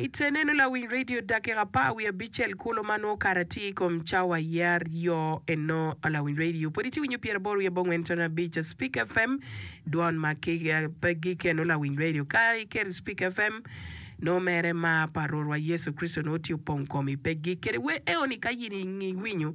Ite neno lawiny redio dakika apar wiye abicel kulu ma nwo kare atir i kom cawa aye aryo eno. Lawiny redio pwod itye winyo pyera boro wiye abongwen ntono abic a Spik FM dwon ma pe gik eno lawiny redio ka iketo i Spik FM nwo mere mar pa Rwotwa Yecu Kricito nwo tye opong komi pe gik kede wer eoni ka in iwinyo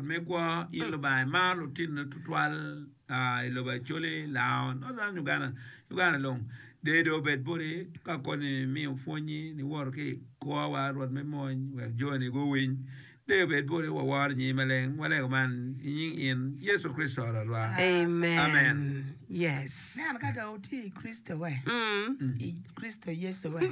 me kwo in Lubanga imaro lutinone tutwal i lobo Acholi, Lao, Northern Uganda, Uganda long. Dee dong obed boti ka koni miyo pwonyi niwoto ki i kwowa Rwot me mony wek joni guwiny. Dee obed boti waworo nyingi maleng walego man i nying in Yecu Kricito Rwotwa. Amen. Amen. Yes. Nen ka dong wutye i Kricito-we, i Kricito Yecu-we.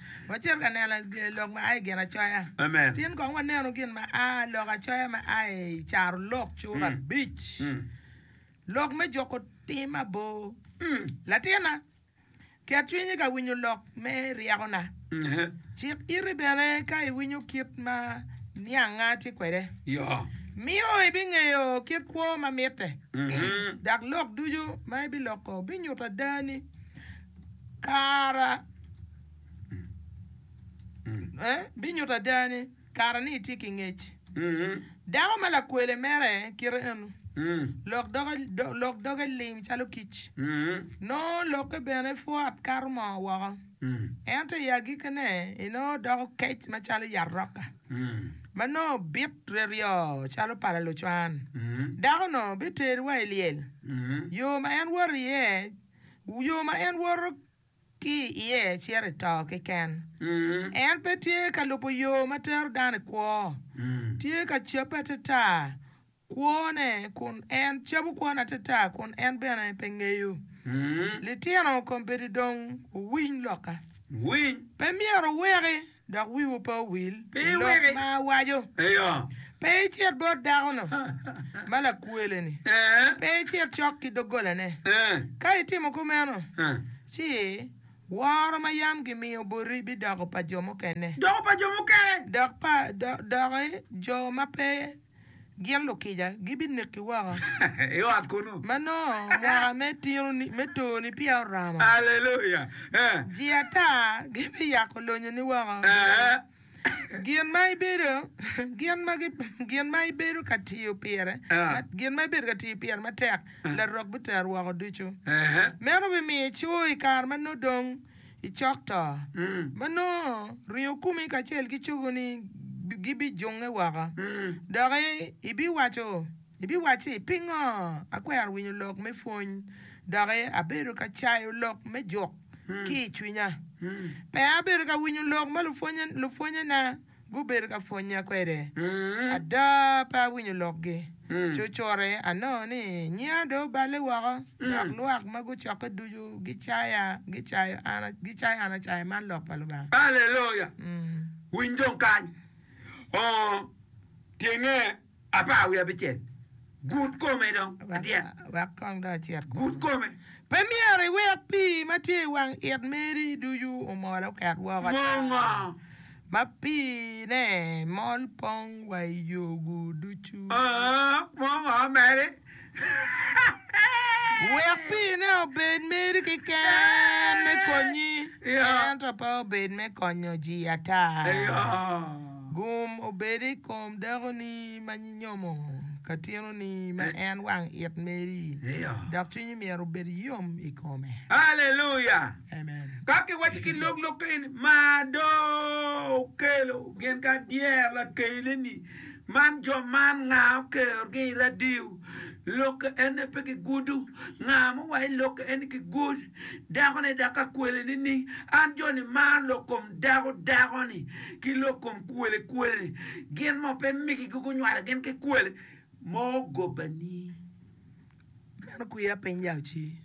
Wacit ka neno lok ma a i Ginacoya. Tin kong wanenu gin ma a lok acoya ma a i Carolok cura abic, Lok me juko tim abor. Latinna, ket cwinyi ka winyo lok me ryekona. Cik iti bene ka iwinyo kit ma niangnga tye kwede. Miyo ibingeyo kit kwo ma mitte, dok lok ducu ma ibiloko binyuto adani kara. binyuto ada ni kare-ni itye ki ngec. Dako ma lakwele mere kite eno, lok doge lim calo kic, nongo lokke bene pwo atkato moo woko, ento i agikkine enongo doko kec macalo yat roka, ma nongo bit reryo calo pala lucwan. Dako-nu biterowa i lyel, yo ma en woto iye, yo ma en woto. ki iye cito i to keken. En pe tye ka lubo yo ma tero dano i kwo. Tye ka cabbe atata kwone kun en cabo kwone atata kun en bene pe ngeyo. Litino kombeddi dong wuwiny lokka. Pe myero wuweki dok wiwu pe owil pi lok ma awaco. Pe icit bot dako-nu ma lakwele-ni, pe icit cok ki doggolane. Ka itimo kumeno, ci woro ma yam gimiyo boti bidoko pa jo mukene, dok pa jo ma pe gin lukica gibineki woko i ot kunnu. Ma nongo mwaka me tinoni, me toni peya oromo, Aleluya! Eh. ji ata gibiyako lonyoni woko i bwomi. Eh. Gin ma ibedo, gin ma gi, gin ma ibedo ka tiyo pire, Eh. ma- gin ma ibedo ka tiyo pire matek, larok bitero woko ducu. Eh. Meno bimiyo ico i kare ma nongo dong I cok to, ma nongo ringo kumi kacel ki cogoni gibijunge woko, doki ibiwaco, ibiwacci, 'Pingo akwero winyo lok me pwony, doki abedo ka cayo lok me juk ki i cwinya? Peya abedo ka winyo lok ma lupwonyena. gubedo ka pwonya kwede. Ada, pe awinyo lokgi. Cucute, anongo ni nyiya dong oballe woko, dok lwak ma gucokke ducu gicaya, gicayo an, gicayo an acaya. Man Lok pa Lubanga. Aleluya! Winy dong kany. Oo, tyenge Apar wiye abicel. Gut kome dong adyet. Wek kong dong acit kunu. Gut kome. Pe myero iwek pii ma tye i wang it meri ducu omol oket woko ata. Mo ngo? Ma piine mol pong wa i yogu ducu. Oo, mo ngo meri? Wek piine obed meri keken me konyi, ento pe obed me konyo ji ata. Gum obed i kom dakoni ma nyinyomo ka tinoni ma en wang it meri, dok cwinyi myero obed yom i kome. Aleluya! Ka kiwaco ki lok lok kene ni, Mar do okelo gin ka dyero lakeleni Man jo man nga okero gi i radio lok ene pe ki gudo nga mo wa ilok eni ki gud dako ne dako akwele ni ni an jo ni maro lok kom dako dako ni ki lok kom kwele kwele ni gin mo pe migi gi gunywalo gin ki kwele mo goba ni meno kwiya piny yal ci.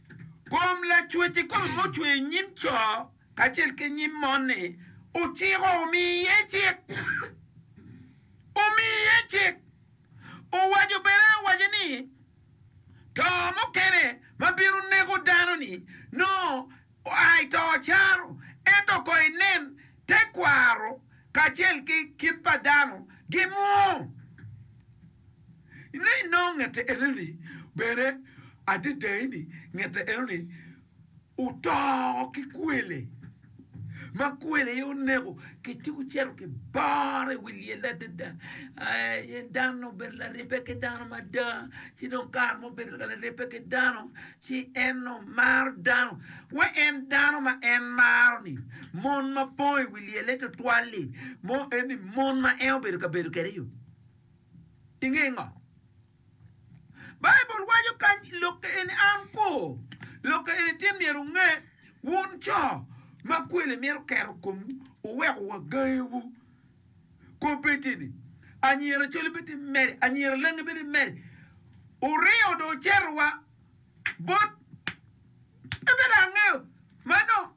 Kom lacwec i kom mo cweyo i nyim coo. kacel ki nyim mon-ni, ociko omi iye cik. Omi iye cik. Owaco bene, owaco ni, To mukene ma bino neko dano-ni, nongo oa i to caro, ento kong inen tekwaro kacel ki kit pa dano gimwoo, ni nongo ngette eno-ni bene adedai-ni, ngette eno-ni. oto ki kwele, ma kwele aye oneko, kiti gucito gibore i wi lyelle adada. Aye dan-ni obedo laribbe ki dano mada, ci dong kare ma obedo laribbe ki dano, ci en omaro dano. Wa en dano ma en maro-ni, mon ma pong i wi lyelle tutwal-li, mo eni mon ma en obedo ka bedo kwede-yu, inge ngo? Baibul waco kany i lok eni, An ko, lok eni tye myero wunge, wun co ma kwele mito keto komwu, wuweko wa gangiwu. Kobbe-teni, anyira coli bed ni meri, anyira langi bed ni meri, wuringo dong wucetowa bot, pe bed angeyo, mano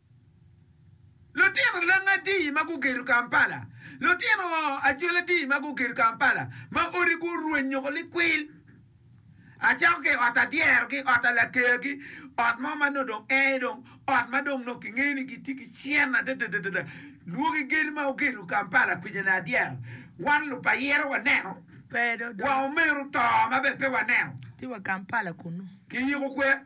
Lutino leng adi ma gugedo Kampala? Lutino acwel adi ma gugedo Kampala ma odi gurwenyo ko likwil? Acako ki i ot adyerogi, ot alakegi, ot mo ma nongo dong ee dong, ot ma dong nongo kingeyo ni gitye ki cen adadadada. Lwoki gedo ma wugedo Kampala kwija-ni adyero, wan lupayira waneno, wa omenu to ma bene pe waneno. Ki yiko kwer.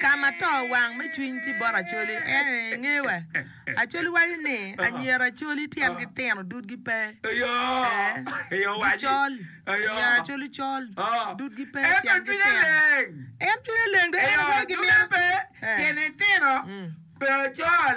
Ka ma to wang me cwiny tye bot Acholi, en aye ngeyo wa. Acholi waco ni, Anyira Acholi tyengi tino, dudgi pe. Gicol. Anyira Acholi col, dudgi pe, tyengi tino. En cwinye leng dong en aye gimito. Tyene tino, pe ocol.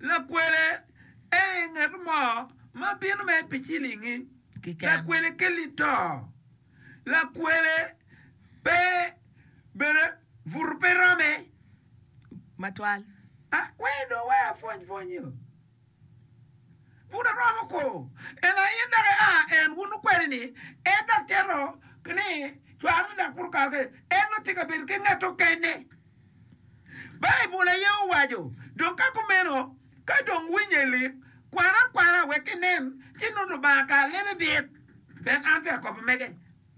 lakwele aye ngat mo ma bino mere pi cilingi keken. Lakwele kelli to. Lakwele pe bene buto pe rome. Matwal. A, wee dong wee apwony pwonyi o. Buto romo ko. En aye in dok aa en wun okweli ni en dok cito ni cware dok buto kalo kene. En dong tye ka bedo ki ngat okene. Baibul aye owaco. Dok ka kumeno, ka dong winye i lik, kwane akwala wek inen ci nongo Lubanga kare lebe bit. Pien an pe akobo mege.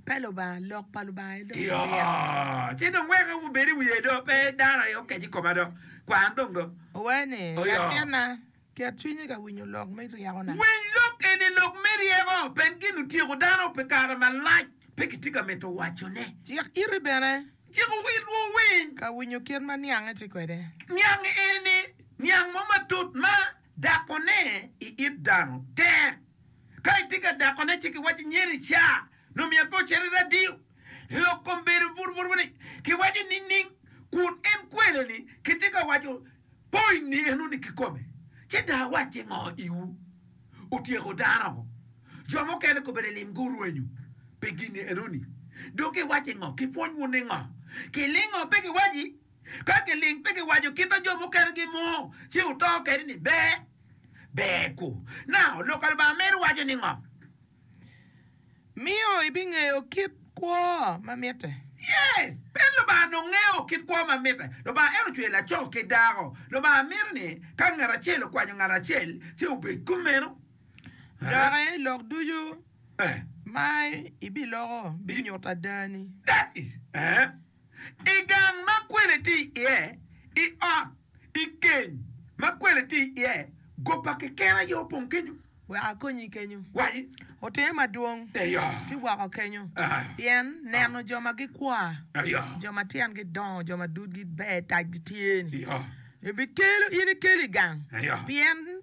Pe Lubanga, Lok pa Lubanga aye dong Iyo, bit. ci dong wek obed i wiye do, pe dano aye okec i koma do, kwan dong do. Owaco ni, Iyo. Latinna, Ket cwinyi ka winyo lok me ryekona. Winy lok eni, lok me ryeko, pien gin otyeko dano pi kare malac, pe kitye ka mito wacone. Cik iti bene. Cik witwu winy. Ka winyo kit ma niange tye kwede. Niang eni, niang mo matut ma dakone i it dano tek. Ka itye ka dakone ci kiwaco nyer i ca nongo myero pe ocit i radio. Lok kom bedo bur bur wene kiwaco nining kun en kweleni kitye ka waco. Pwony ni enoni kikome, ci dong awac ki ngo iwu? Otyeko dano ngo? Jo mukene kobedo lim gurwenyo pi gin ni enoni. Dong giwac ki ngo? Kipwony wun ni ngo? Kiling ngo pe giwaci? Ka kiling pe giwaco kit ma jo mukene gimur ci oto kede ni ber, ber ku, na, Lok pa Lubanga meri waco ni ngo? miyo ibingeyo kit kwo ma mitte. Yes! Pien Lubanga onongo ngeyo kit kwo ma mitte. Lubanga en ocweyo laco ki dako. Lubanga mito ni ka ngat acel okwanyo ngat acel, ci obed kumeno. Doki lok ducu ma ibiloko binyuto adani. That is. I gang ma kwele tye iye, i ot, i keny ma kwele tye iye, go pa keken aye opong kenyo. Wek akonyi kenyo. Waci. Otimme madwong. Eyo. Ci woko kenyo. Aa. Pien neno jo ma gikwa, Eyo. jo ma tyengi dongo, jo ma dudgi ber, tacgi tye-ni, Eyo. ebikelo in ikelo i gang, Eyo. pien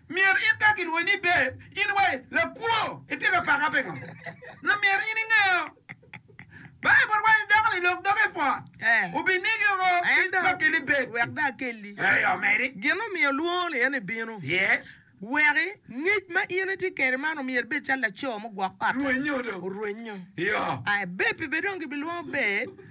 Myero in ka gilwonyi ni Dave, in iwaci, 'Lakwo, itye ka paka pingo? Nyo myero in ingeyo. Baibul waco ni dakoni lok doge i pwot, obinigi woko ki dok keli bed. Wek dong akelli gin ma omiyo olwongo-ni en ebino, wek ngec ma in itye kwede man omyeri ibed calo laco mugwok ot-ti, orwenyo. Aye, beppi bene dong gibilwongo Bed,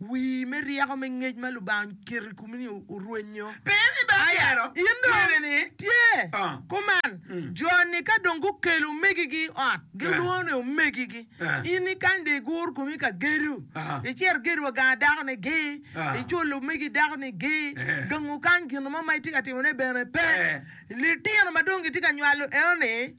wii me ryeko me ngec ma Lubanga oketo i komi-ni orwenyo. Aya, in dong tye kuman. Jo-ni ka dong gukelo omegigi i ot, gilwongo ni omegigi. In ikany dong igur komi ka gedo, icito igedo wa gang dakoni gi, iculo omegi dakoni gi, gang okany gin mo ma itye ka timone bene pe. Litino ma dong gitye ka nywalo enoni.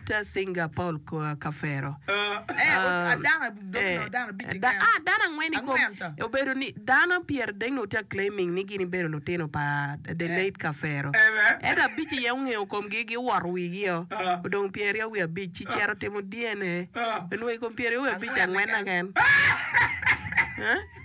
Te cinga pa Kafero. Dano angwen i kom obedo ni dano pyeradek nongo tye ka claiming ni gin gibedo lutino pa the late Kafero. Ento abic aye ongeyo komgi gi owoto wigi o. Odong pyeraryo wiye abic ci cito timo DNA. Onongo i kom pyeraryo wiye abic angwen keken.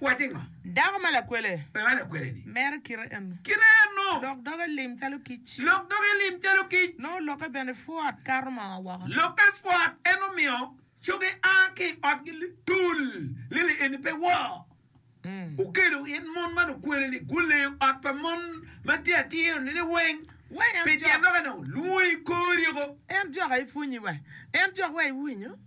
Wacce ngo? Dako ma lakwele. Pe ma lakwele ni. Mere kite eno. Kite eno. Lok doge lim calo kic. Lok doge lim calo kic. Nongo loke bene pwot kato ma oa woko. Loke pwot en omiyo coge a ki i otgi litul. Lili eni pe woo. Okelo in mon ma lukwele ni guleyo ot pa mon ma tye atir ni liweng. Pi tyen loke no, lwongo i kori oko. En jok aye pwonyi wa. En jok wa iwinyo.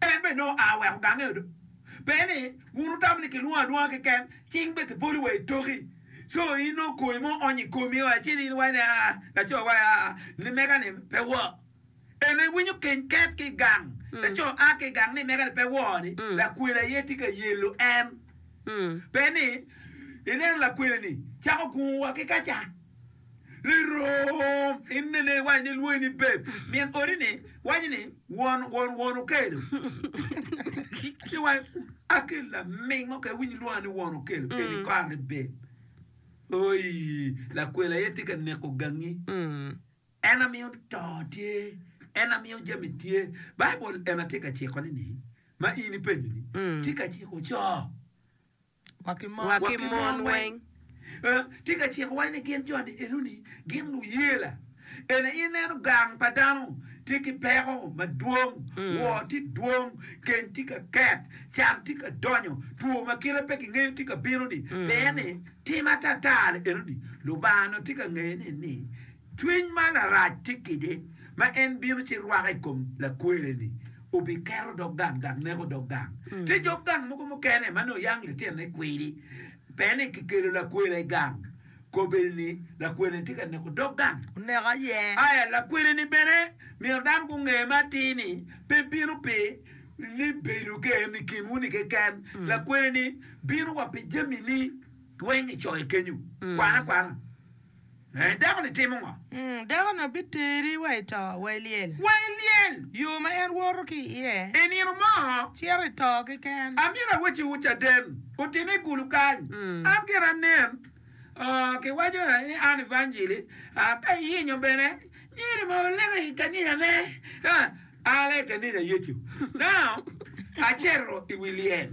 En bene nongo oa weko gange odo. Pe ni wun wutamo ni kilwongo alwonga keken, cing be kibolo wa itoki. Co in nongo koi mo oonyo i komi wa ci in iwaco ni, Aa, laco wa, aa, nimega-ni pe woo. En aye winyo keny ket ki i gang. Laco a ki i gang nimega-ni pe woo-ni, lakwena aye tye ka yelo en. Pe ni ineno lakwena-ni cako gungo wa ki kaca. Lerom inene iwac ni lwonyi ni beb, min odi ni waci ni won won won okelo. Ki wac akelo laming mo ke winyi lwonga ni won okelo mm. eni kor ni beb. Oi, lakwela ye tye ka neko gangi. Mm. En amiyo to tye, en amiyo jami tye. Baibul en atye ka ciko ni ni ma in ipenyo ni mm. tye ka ciko co. wa ki mon weng. Tye ka cikowa ni gin joni enoni gin luyela. Ene i neno gang pa dano tye ki peko madwong, woo tye dwong, keny tye ka ket, can tye ka donyo, two ma kite pe kingeyo tye ka bino ni. Pien ni tim atatali enoni Lubanga onongo tye ka ngeye ni ni Cwiny ma larac tye kede, ma en bino ci rwako i kom lakwere-ni, obikero dog gang dok neko dog gang. Tye dog gang mogo mukene ma nongo yam litine kwiri pe ni kikelo lakwela i gang, kobbe-ni ni lakwela-ni tye ka neko dog gang. Oneko aye. Aya, lakwere-ni bene myero dano gunge me atir ni pe bino pi ni bedo ke en i kinwu-ni keken, lakwere-ni bino wa pi jami-ni weng i coye kenyo. Kwan akwana. Ee, dako-ni timo ngo? Ung, dako-ni obiteri wa i to, wa i lyel. Wa i lyel! Yo ma en woto ki iye. I nino mo. Cito i to keken. Amyero awacciwu caden, otime i kulu kany. An gire anen, oo, kiwaco ni an evanjili, aa, ka iyenyo bene, myero ma waleke i kaniya ne. Ha, ala i kaniya Yecu. Now, acito i wi lyel.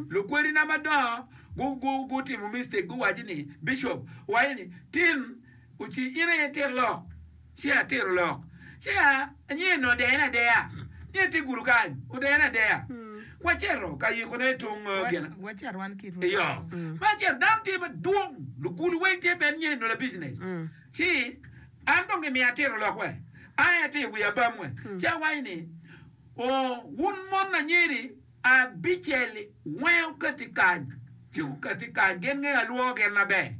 Lukwodina madongo. gutimo mistake guwaco ni bicop owaco ni tin oci in aye itit lok ci atito lok ci anyer ni odene adeya ni atye gudo kany odene adeya waceto ka yiko ne tung gina iyo ma aceto dano tye madwong lugulu weng tye bene nyer nola business ci an dong gimiya atito lok we aye atye iwiya bam we ci awaco ni oo wun mon anyeri Abicel-li weng okati kar ci gukati kar gin nge alwor gin maber.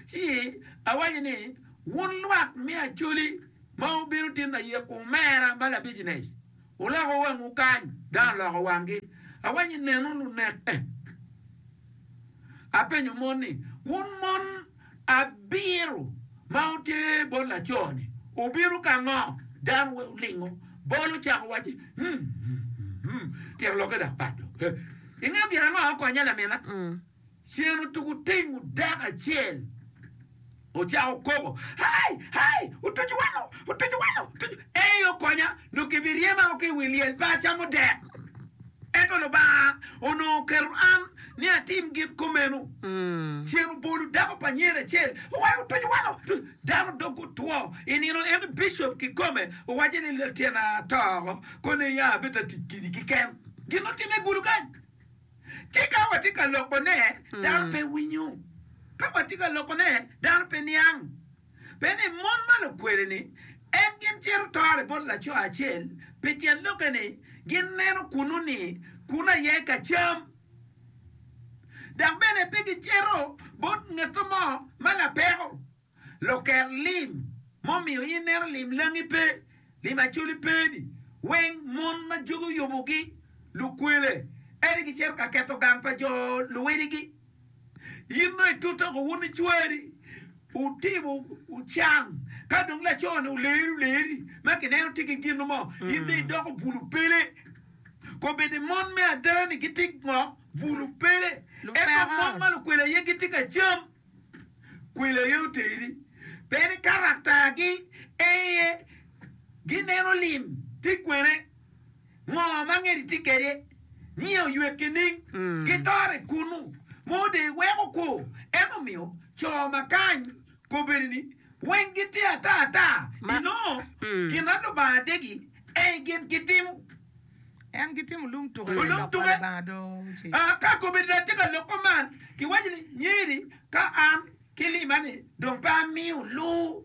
Ci awaco ni, Wun lwak me Acholi ma wubino tin ayek omera ma labicnec, wuloko wangwu kany! Dano oloko wanggi. Awaco ni, Nenu lunek-ke. Apenyo mon ni, Wun mon, Abiro ma oter bot laco-ni obino ka ngo? Dano weng olingo bolo cako wacce, Hum-hum-hum-hum, tyen lokke dok pat dong. He, ingeyo gin ango aye okonye lamina? Cen otuku tingu dako acel ocako koko, Hai! Hai! Otucu wano! Otucu wano! Otucu! Ei okonya, nongo kibiryema oko i wi lyel pe acamo dek. Ento Lubanga onongo oketo an ni atim gin kumeno. Cen obolo dako pa nyen acel, oweko otuco woko. Dano dog otwo. I nino eni bicop kikome owacce ni latyena to oko, koni aya abed ta tic kidi keken. Gin otimme i gulu kany. Ci ka watye ka lokone, dano pe winyo. Ka watye ka lokone, dano pe niang. Pi ni mon ma lukwele-ni en gin cito tore bot laco acel, pi tyen lokke ni gin neno kunnu ni kunnu aye ka cam, dok bene pe gi cito bot ngatto mo ma lapeko. Loker lim mo miyo in neno lim langi pe, lim acoli pe ni weng mon ma jogi oyubugi lukwele, ento gi cito ka keto gang pa jo luwiligi. In dong itute oko wun icwari, wutimo, wucan, ka dong laco-ni oleri oleri ma kineno tye ki gin mo, in dong idoko bulu pele. Kobedi mon me ada-ni gitye ngo? Bulu pele. Ento mon ma lukwele aye gitye ka cam, kwele aye oteri. Pe ni karaktagi, ee, gineno lim, ti kwene. Ngo ma ngedi tye kede nio oywe kining ki tore kunu mo de weko kwo en omiyo co ma kany kobedi ni weng gi tye ata ata i nongo gin a lubanga degi ei gin ki timo en ki timo lum tuke me lok ma lubanga do ci. A ka kobedi da tye ka lok ko man ki waco ni nyeri ka an ki limane dong pe amiyo luu.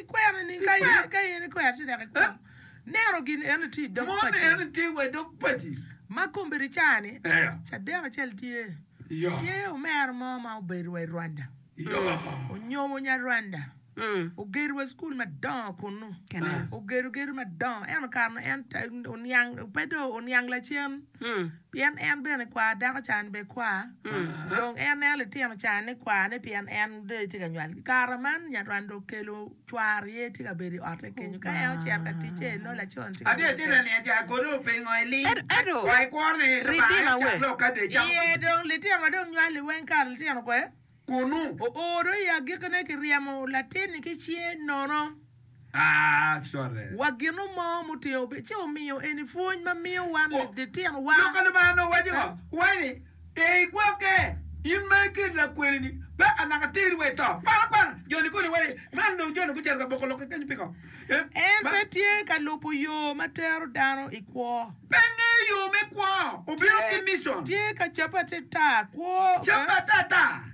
Ikwero ni ka in ikwero ci dok ikwong neno gin eno ni tye i dog paci. Mon eno ni tye wa i dog paci. Ma kombeddi caa ni cadek acel tye, tye omera mo ma obedo wa i Rwanda, onyomo nya Rwanda, ogedo wa cukul madongo kunnu, ogedo gedo madongo eno kare nu en oniang pe dong oniang lacen. Pien en bene kwar dako can bene kwar, dong en neno litino can ni kwar ne pien en dong tye ka nywal. I kare man nyarwany dong okelo cwar aye tye ka bedo i otte kenyo ka en ocito ka tic ce nongo laco ni tye ka bedo kede. Iye dong litino ma dong nywali weng kare litino kwe? kunu. Ooro i agikine kiryemo latin-ni ki cinge nono. Wa ginu mo mutingo bene ci omiyo eni pwony ma miyo wan litinowa. Lok a Lubanga onongo waco ngo? Owaco ni, Pe igwokke, in ma ikelo lakwenini, peka naka teri wa i to. Kwan akwana, jo-ni koni wai, man dong jo-ni gucito ka boko lok kekeni piko? En pe tye ka lubo yo ma tero dano i kwo. Pe ngeyo yo me kwo. Obino ki mission. Tye ka cabbe atata kwo. Cabbe atata.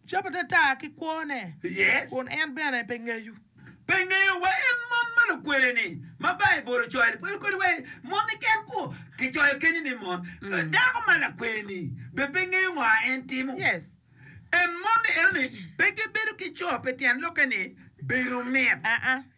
Cabbe atata ki kwone. Yes. Kun en bene pe ngeyo. Pe ngeyo wa en mon ma lukwele-ni ma Baibul ocoyo-ni. Pwod kodi wa mon-ni ken kwo. Kicoyo kenyo ni mon. Dako ma lakwele-ni bene pe ngeyo ngo a en timo. Yes. En moni eno ni pe gibedo ki co pi tyen lokke ni bedo mit.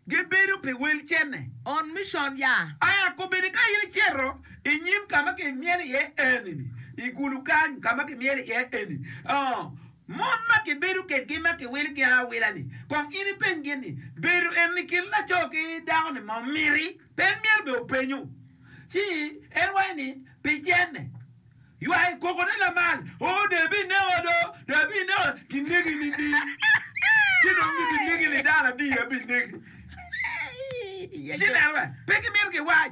Gibedo pi wel cene. On mission ya. Aya kobedi ka in icito i nyim ka ma kimyelo iye eni-ni, i kulu kany ka ma kimyelo iye eni, oo, mon ma kibedo kedgi ma kiwilo gin awila-ni, kong in ipenygi ni, Bedo eni kin laco ki dako-ni ma omiti? Pe en myero bene openyu. Ci en waco ni, Pi cene. Ywak kokone lamal, Oo, dong ibineka do, dong ibineka, ginegi nining? Ci dong nyo ginegi ni dano adi abineki? Ci nen wa, pe gimito giwac.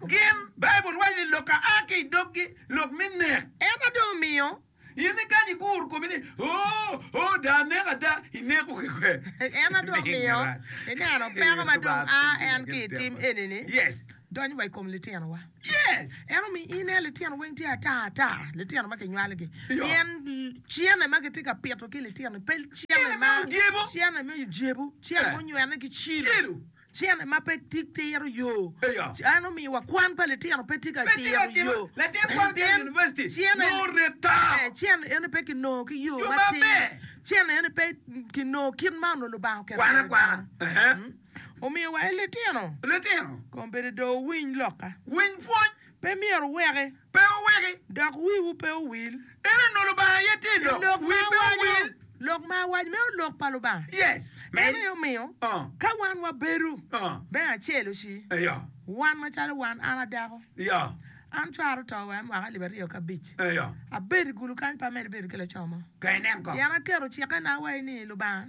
Gin, Baibul waco ni lok a a ki i doggi lok me nek. Ento dong omiyo In ikanyo iguro komi ni, Oh, oh, da anek ada, ineko ki kwe. En adok Ling miyo marac. ineno peko Ee, ma Lubanga dong a pingo en ki i tim tekwa. eni-ni, Yes, donyo wa i kom litinowa. yes. En omiyo in aye litino weng tye ata ata, litino ma kinywalogi. Yo. Pien cene ma kitye ka pito ki litino-ni pe Cene cene me ma odyebo. cene me odyebo, cene Eh. munywene ki cilo. Cilo. Cene ma pe titiro yo. Cene omiwa kwan pa litino pe tye ka tiro yo. Cene eni pe ki nongo ki yo matir. Cene eni pe ki nongo kit ma onongo Lubanga oketo kwede dano. Omiyo wa en litino, kombeddi do wuwiny lokka. Pe myero wuweke. Pe wuweki. Dok wiwu pe owil. Ento nongo Lubanga aye tye i lok. I lok ma Wi pe awaco, owil. lok ma awaco meno lok pa Lubanga. Yes. Meno aye omiyo Oh. ka wan wabedo Oh. me acel-lu ci, Eyo. wan macalo wan, an adako, Eyo. an cwaro to wa mwaka alip aryo ki abic, Eyo. abedo i gulu kany pe amedo bedo ki laco mo, Ka inen ko. pien aketo cikena wa ini, Lubanga,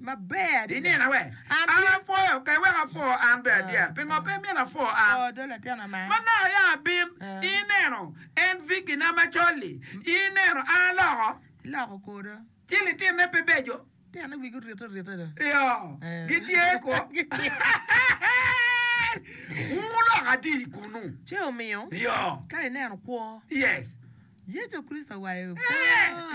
maber adada. Inena wek an apwoyo pe wek apwo an bene adyera. Pingo pe imyero apwo an? Manaka ya abin, ineno en Vicky-na macol-li, ineno an aloko ci litine pe beco. Iyo, gitye kwo. Wungu lok adi kunnu? Iyo. Yes. Ee.